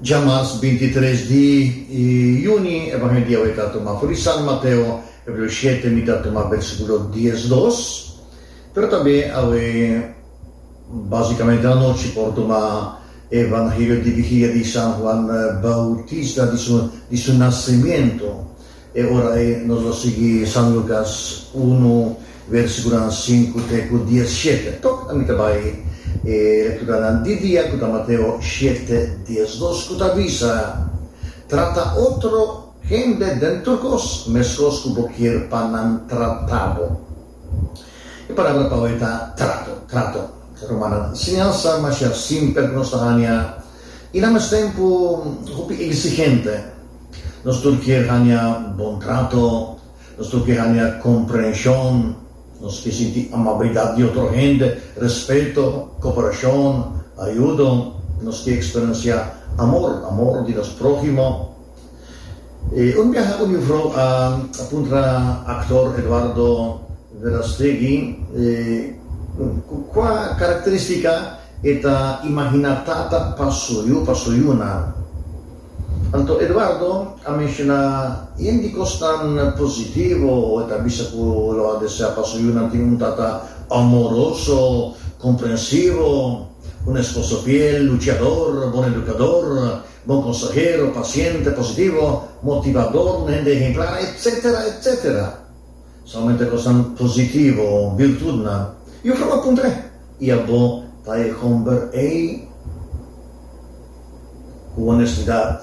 Dja mas bintitres di yuni e ban e dia wei ta tuma for di San Mateo, capitulo shete, mi ta tuma versiculo dies dos, pero tambe awe basicamente na nochi por tuma e Evangelio di Vigilia di San Juan Bautista, di su di su nacimiento. E ora ei nos lo sigui San Lucas unu versiculonan sinku te ku diesshete. Tok ami ta bai e lekturanan di dia ku ta Mateo shete diesdos ku ta bisa, Trata otro hende den tur kos meskos ku bo kier pa nan trata bo. E palabra pa hoy ta trato, trato. Rumannan, enseñansa masha simpel ku nos ta hania i na mes tempu hopi eksigente. Nos tur kier haña bon trato, nos tur kier haña komprenshon, nos kier sinti amabilidat di otro hende, respeto, koperashon, ayudo, nos kier eksperensiá amor, amor di nos próhimo. E un biaha un juffrou a puntra aktor Eduardo Verastegui kua karakterístika e ta imaginá tata pa su yu, pa su yunan. Anto Eduardo a menshona yen di kosnan positivo ku e ta bisa ku lo a desea pa su yunan tin un tata amoroso, komprensivo, un esposo fiel, luchador, bon edukador, bon konsahero, pasiente, positivo, motivador, un hende ehemplar, etsetera, etsetera. Solamente cosnan positivo, virtudnan, yo caba cumpré. Y abo ta e homber ey? Cu honestidad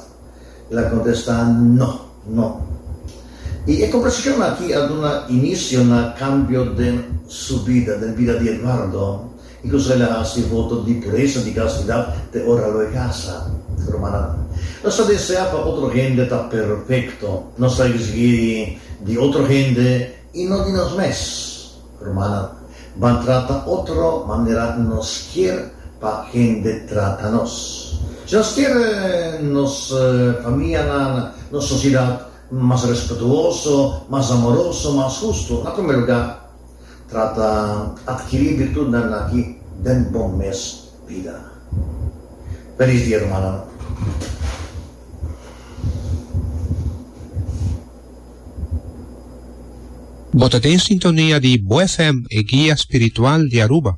el a contesta, No, no. Y e conversacion aki a duna inicio na cambio den su bida, den bida di Eduardo. I kon esei la hasi e voto di puresa di kastidat te ora lo e kasa? Rumannan, nos ta desea pa otro hende ta perfekto. Nos ta risgei di otro hende i no di nos mes. Rumannan, ban trata otro manera nos kier pa hende trata nos. Si nos kier nos famianan, nos sosiedat mas respetuoso, mas amoroso, mas hustu, na primer lugá, Trata adkiri birtutnan aki den bo mes bida. Felis dia rumannan. Bo ta den sintonia di BoFm, e guia spiritual di Aruba.